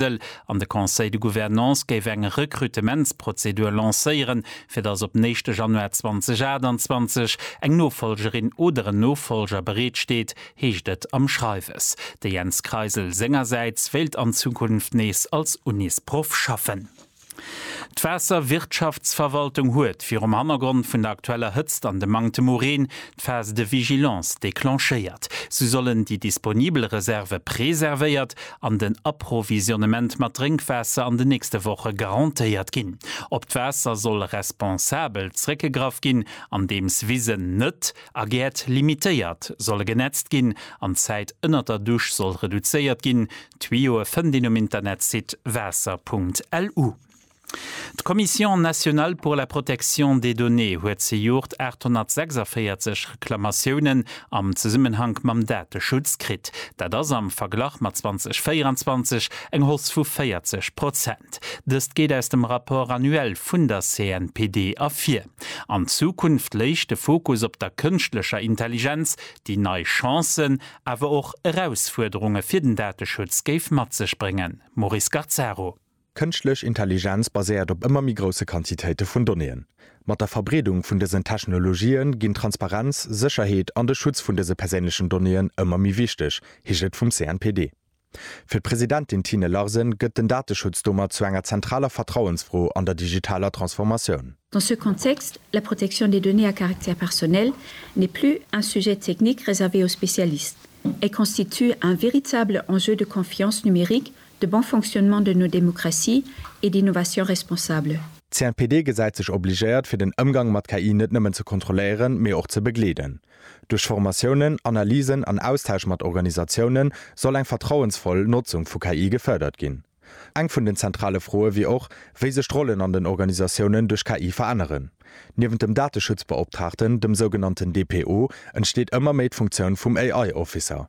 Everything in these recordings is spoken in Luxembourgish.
Dëll an de Conseil de Gouvernance géif eng Rekrutementsprozedur lancéieren, fir datt op den éischte Januar 2028 eng Nofolgerin oder en Nofolger bereet steet, heescht et am Schreiwes. De Jens Kreisel sengersäits wéilt an Zukunft nees als Unisproff schaffen. D'Waasserwirtschaftsverwaltung huet, virum Hannergrond vun der aktueller Hëtzt an dem Manktem u Reen, d'Phase de vigilance declenchéiert. Sou sollen déi disponibel Reserve preservéiert an den Approvisionnement mat Drénkwaasser an den nächste Woche garantéiert ginn. Op d'Waasser soll responsabel zréckgegraff ginn, andeems Wisen net a Gäert limitéiert solle genetzt ginn an d'Zäit ënnert der Dusch soll reduzéiert ginn, D'Tuyauë fënnt een um Internetsite waasser.lu. D'Commission nationale pour la protection des données huet zejoert 846 Reklamatiounen am Zesummenhank mam Dateschutz kritt. Dat ass am Verglach mat 2024 eng Hausse vu 40 Prozent. Dëst geet aus dem Rapport annuel vun der CNPD ervir. An Zukunft léich de Fokus op der kënschtlecher Intelligenz, déi nei Chancen awer och Erausfuerderunge fir den Dateschutz géif mat sech bréngen, Maurice Gazzaro. Kënschtlech Intelligenz baséiert op ëmmer méi grousse Quantitéite vun Donnéeën. Mat der Verbreedung vun dësen Technologië ginn Transparenz, Sécherheet an de Schutz vun dëse perséinlechen Donnéeën ëmmer méi wichteg, heescht et vum CNPD. Fir d'Presidentin Tine Larsen gëtt den Dateschutz domat zu enger zentraler Vertrauensfro an der digitaler Transformatioun. Dans ce contexte, la protection des données à caractère personnel n'est plus un sujet technique réservé aux spécialistes. Elle constitue un véritable enjeu de confiance numérique, de bon fonctionnement de nos démocraties et d'innovation responsable. D'CNPD gesäit sech obligéiert, fir den Ëmgang mat KI net nëmmen ze kontrolléieren, mee och ze begleeden. Duerch Formatiounen, Analysen an Austausch mat Organisatiounen soll eng vertrauensvoll Notzung vu KI gefërdert ginn. Eng vun den zentrale Froe wier och, wéi sech d'Rollen an den Organisatiounen duerch KI veränneren. Niewent dem Dateschutzbeoptraagten, dem sougenannten DPO, entsteet ëmmer méi d'Funktioun vum AI-Officer.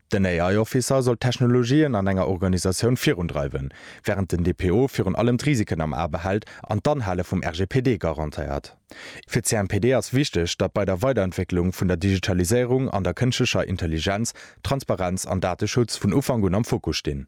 Den AI-Officer soll d'Technologien an enger Organisatioun virundreiwen, wärend den DPO virun allem d'Risiken am A behält an d'Anhale vum RGPD garantéiert. Fir d'CNPD ass wichteg, datt bei der Weiderentwécklung vun der Digitaliséierung an der kënschtlecher Intelligenz Transparenz an Dateschutz vun Ufank un am Fokus stinn.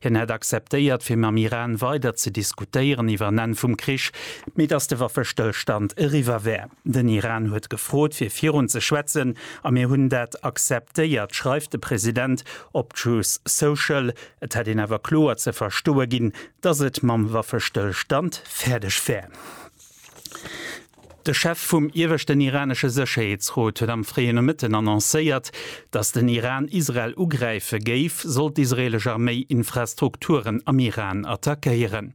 Hien hätt acceptéiert fir mam Iran weider ze diskutéieren iwwer en Enn vum Krich, mee datt de Waffestëllstand eriwwer wär. Den Iran huet gefrot fir virun ze schwätzen a mir hunn dat acceptéiert, schreift de President op Truth Social. Et hätt een awer kloer ze verstoe ginn, datt et mam Waffestëllstand fäerdeg wär. De Chef vum ieweschten iranesche Sécherheetsrot huet am fréie Nomëtten annoncéiert, datt den Iran Israel ugräife géif, sollt d'israelesch Arméi Infrastrukturen am Iran attackéieren.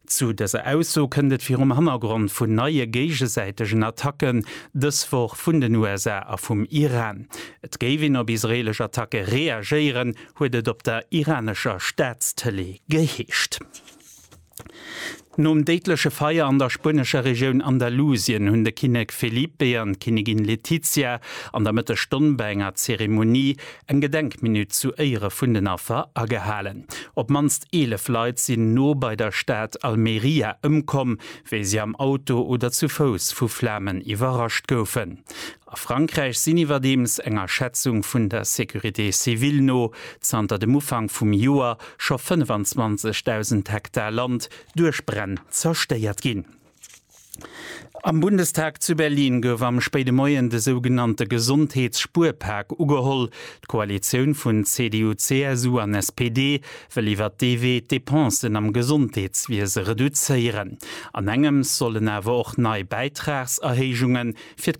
Zu dëser Ausso kënnt et virum Hannergrond vun neie géigesäitegen Attacken dës Woch vun den USA a vum Iran. Et géif een op israelesch Attacke reagéieren, huet et op der iranescher Staatstëlee geheescht. Nom déidleche Feier an der spuenescher Regioun Andalusien hunn de Kinnek Felipe an d'Kinnigin Letizia an der Mëtteg Stonn bei enger Zeremonie eng Gedenkminutt zu Éiere vun den Affer agehalen. Op mannst 11 Leit sinn no bei der Stad Almeria ëmkomm, wéi si am Auto oder zu Fouss vu Flamen iwwerrascht goufen. A Frankräich sinn iwwerdeems, enger Schätzung vun der Sécurité civile no, zanter dem Ufank vum Joer scho 25.000 Hektar Land duerch Bränn zerstéiert ginn. Am Bundestag zu Berlin gouf am spéide Moien de sougenannte Gesondheets-Spuerpak ugeholl. D'Koalitioun vun CDU, CSU an SPD wëll iwwert dee Wee d'Depensen am Gesondheetswiese reduzéieren. An engems sollen awer och nei Bäitragserhéijunge fir